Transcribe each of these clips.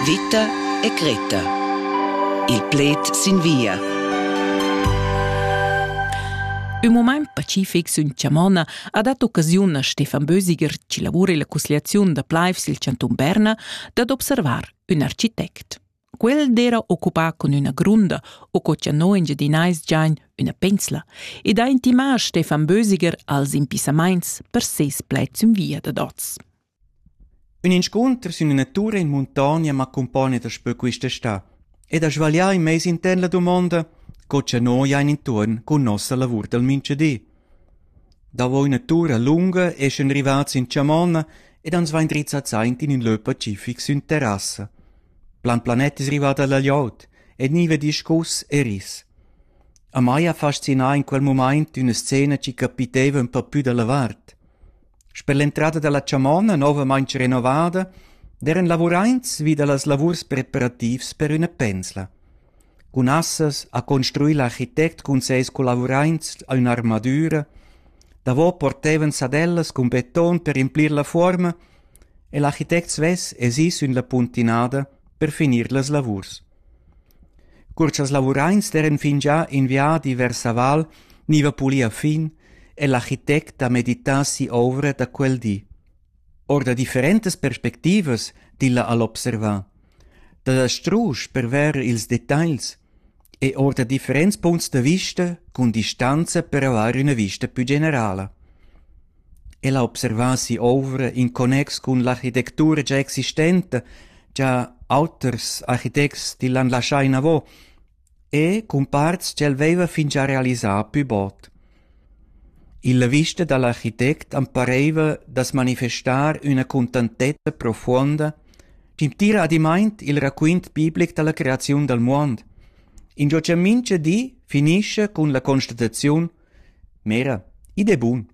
Vita e Greta. Il pled sin via. Ün mumaint pacific sün Chamona ha dat occasiun a Stefan Bösiger, chi lavura illa cussgliaziun da plaivs i'l chantun Berna, dad observar ün architect. Quel d'era occupà cun üna grunda o co cha no in Giadinais giain üna pensla ed ha intimà Stefan Bösiger als impissamaints per seis pled sün via dad oz. Ün inscunter sün üna tur in muntogna m'accumpogna daspö quist'està ed ha svaglià in meis intern la dumonda co cha noi hain intuorn cun nossa lavur dal minchadi. Davo üna tura lunga eschan rivats in chamonna ed ans vain drizzats aint in ün lö pacific sün terrassa. Plan planet es rivada la glieud e gniva discuss e ris. A mai ha fascinà in quel mumaint üna scena chi capiteva ün pa pü da la vart. Sper l'entrada dalla chamonna novamain renovada d'eran lavuraints vi dallas lavurs preparativs per üna pensla. Cun assas ha construì l'architect cun seis collavuraints a ün'armadüra. Davo portevan sadellas cun beton per implir la fuorma e l'architect svess es ì sün la puntinada per finir las lavurs. Cur cha'ls lavuraints d'eiran fingià in viadi vers la val gniva pulì a fin è l'architect da meditar si'ouvra da quel di. Our da differentas perspectivas tilla ha'l observà. Da strusch per verer ils detagls e our da differents punts da vista cun distanza per avair üna vista pü generala. El ha observà si'ovra in connex cun l'architectura gia existenta cha auters architects til han laschà inavo e cun parts ch'el vaiva fingià realisà pü bod. Illa vista da l'architect am paraiva da's manifestar üna cuntantezza profuonda chi'm tira adimaint il raquint biblic da la creaziun dal muond, ingio cha mincha di finischa cun la constataziun Mera, id è bun.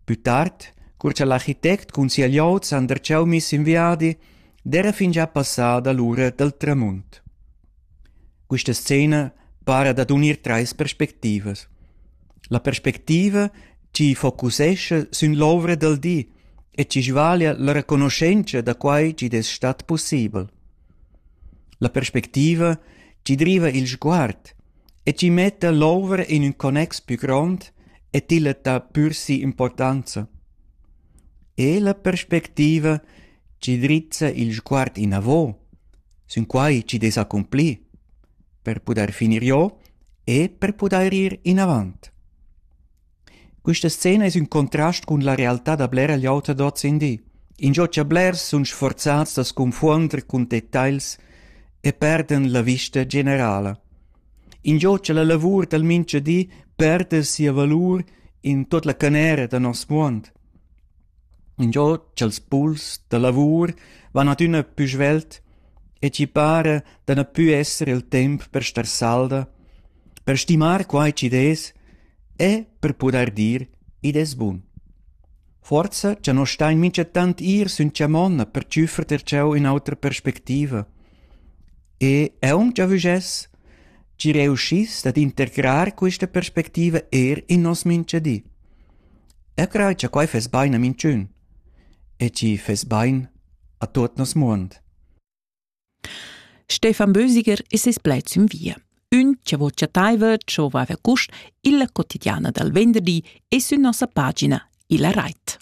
Pü tard, cur cha l'architect cun sia glioud s'han darcheu miss in viadi, d'eira fingià passada l'ura dal tramunt. Quista scena para dad unir trais perspectivas. La perspectiva chi focusescha sün l'ouvra dal di e chi svaglia la reconoschentscha da quai chi'd es stat pussibel. La perspectiva chi driva il sguard e tgi metta l'ovra in ün connex pü grond e tilla dà pür si'importanza. E la perspectiva chi drizza il sguard inavo, sün quai chi dess accomplir, per pudair finir jo e per pudair ir inavant. Questa scena es ün contrast cun la realtà da blera gliout ad hoz in di. Ingio cha blers sun sforzats da sconfuonder cun detagls e perdan la vista generala. Ingio cha la lavur dal mincha di perda sia valur in tuot la canera da nos muond. Ingio cha'ls puls da lavur van adüna pü svelt e chi para da na pü esser il temp per star salda, per stimar quai chi'd es E, per pudair dir, id es bun. Forsa cha no stain minchatant ir sün chamonna per tschüffer ter cheu ün'otra perspectiva. E eau cha vügess, chi reuschiss dad integrar quista perspectiva eir in nos minchadi. Eu craj cha quai fess bain a minchün e chi fess bain a tuot nos muond. Stefan Bösiger e ses pled sün via. Ün cha vo chattaiva ciò vaiva cust illa quotidiana dal venderdi e sün nossa pagina illa rait.